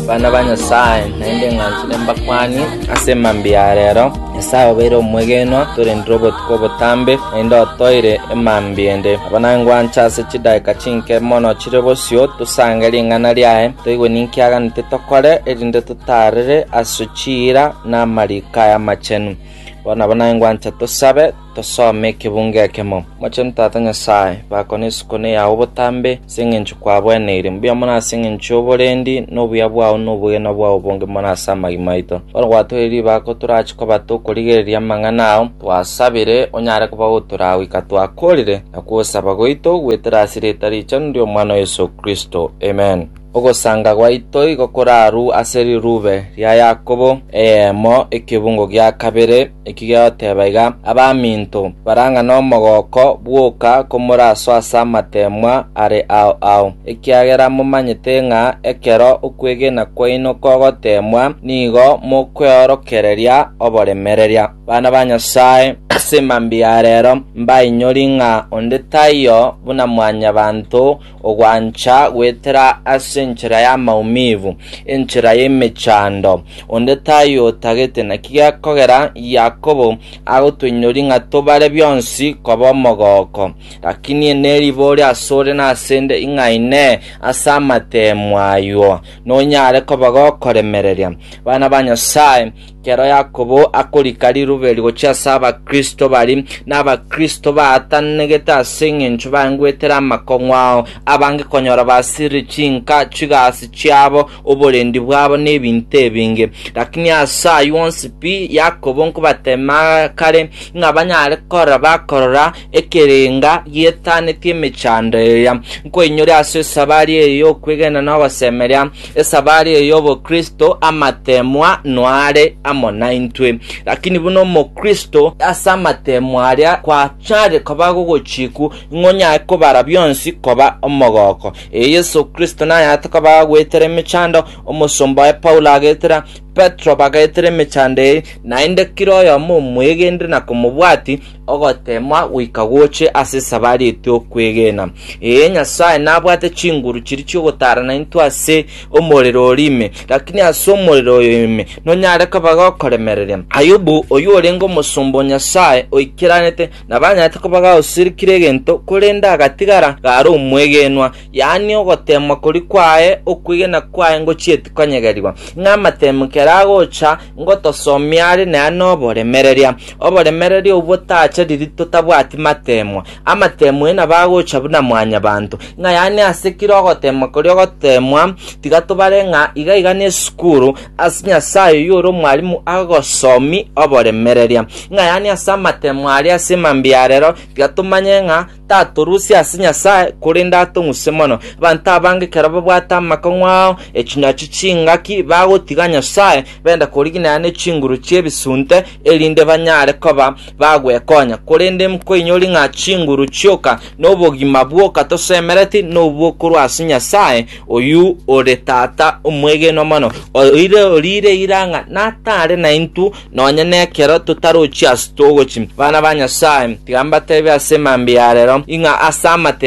Abana ba Nyasae, naende ing'ansire mbakwanie ase mambia ya rero. Nyasae obeire omwegenwa, torendire obotuko obotambe, naende otoeire emambia ende. Nabo nangwanche ase chidakika chinke mono chire bosio, tosange ring'ana riaye, toigwe ninki aganete tokore, erinde totaarere ase chiira na amariko aye amachenu. Bono nabo nangwancha tosabe. Tosome ekebungo ekemo. Mochenu Tata Nyasae, bako nesukune yao botambe, ase engencho kwabweneire. Mbuya mono ase engencho y'oborendi, na obuya bwao na obogima bwao bonge mono ase amagima aito. Bono gwatoire ribako torache koba tokorigereria amang'ana ao, twasabire onyare koba otoragoika twakorire, na kwosaba gwaito gwetera ase rieta richenu ri'omwana o Yeso Kristo. Amen. Ogosanga gwaito igo koraru ase rirube ria Yakobo eyemo ekebungo gia kabere, Ekigeoteba iga, abaminto barang'a nomogooko bwoka komoraso ase amateemwa are ao ao, ekiagera momanyete ng'a ekero okwegena kwaino kogoteemwa nigo mokweorokereria oboremereria. Bana ba Nyasae, ase mambia ya reero, mbainyori ng'a onde taiyo buna mwanyabanto, ogwancha goetera ase enchera y'amaumivu, enchera y'emechando. Onde tayotagete, naki gekogera Yakobo agotoinyoria ng'a tobare bionsi koba omogoko. Lakini neribori asore nasende ing'a ine ase amateemu ayio, nonyare koba gokoremereria. Bana ba Nyasae, Ekero Yakobo akorika rirube rigochia ase Abakristo bari n'Abakristo baatananegete ase engencho bangwetire amakong'u ao, abange konyora basirire chinka, chigasi chiabo, oborendi bwabo, na ebinto ebinge. Lakini ase ayio onsi pi, Yakobo nkobateema kare, ng'a banyare korora bakorora ekerenga gietanetie emechando eria, nkoinyore ase esabari eye y'okwegena na ogosemeria, esabari eye y'obokristo, amateemwa noare amo naintwe. Lakini buna omokristo, ase amateemwa aria kwachare koba gogochiku, ng'a onyare kobara bionsi koba omogoko. Ee, Yeso Kristo nayarete koba agwetera emechando, omosomba oye Paulo agetera, Petero bagetera emechando eye, naende kera oyomo omwegenire na komobwati, Ogoteemwa goika goche ase esabari etwe okwegena. Ee, Nyasae nabwate chinguru chiria chi'ogotaarana intwe ase omorero oria ime, lakini ase omorero oyo ime nonyare koba gokoremereria. Ayubu, oyio orenge omosomba o Nyasae oikeranete, nabanyaarete koba gaosirikire egento, korende agatigara gare omwegenwa, yaani ogoteemwa koria kwaye okwegena kwaye ngochieti konyegerigwa. Ng'a amateemwa ekero agocha, Ngotosomia are nere noboremereria, oboremereria obwo tacha riri totabwati mateemwa. Amateemwa aye nabo agocha buna mwanyabanto. Ng'a yaani ase kera ogoteemwa koria ogoteemwa, tiga tobare ng'a iga iga nesukuru ase Nyasae oyio ore omwalimu agosomi oboremereria. Ng'a yaani ase amateemwa aria ase mambia arero, tiga tomanye ng'a Tatorusia ase Nyasae, korende atong'use mono. Abanto abange ekero babwate amakong'u ao, echinyachi chingaki, bagotiga Nyasae, bende koriginerana ne chinguru chi'ebisunte, erinde banyare koba bagwekonya. Korende nkoinyori ng'a chinguru chioka nobogima bwoka tosemereti nobwo korwa ase Nyasae, oyio ore Tata omwegenwa mono, oire orire ira ng'a natare naintwe Nonya nekero totarochia ase togochi bana ba Nyasae, tiga mbateebie ase emambia ya rero, ing'a ase amatemo,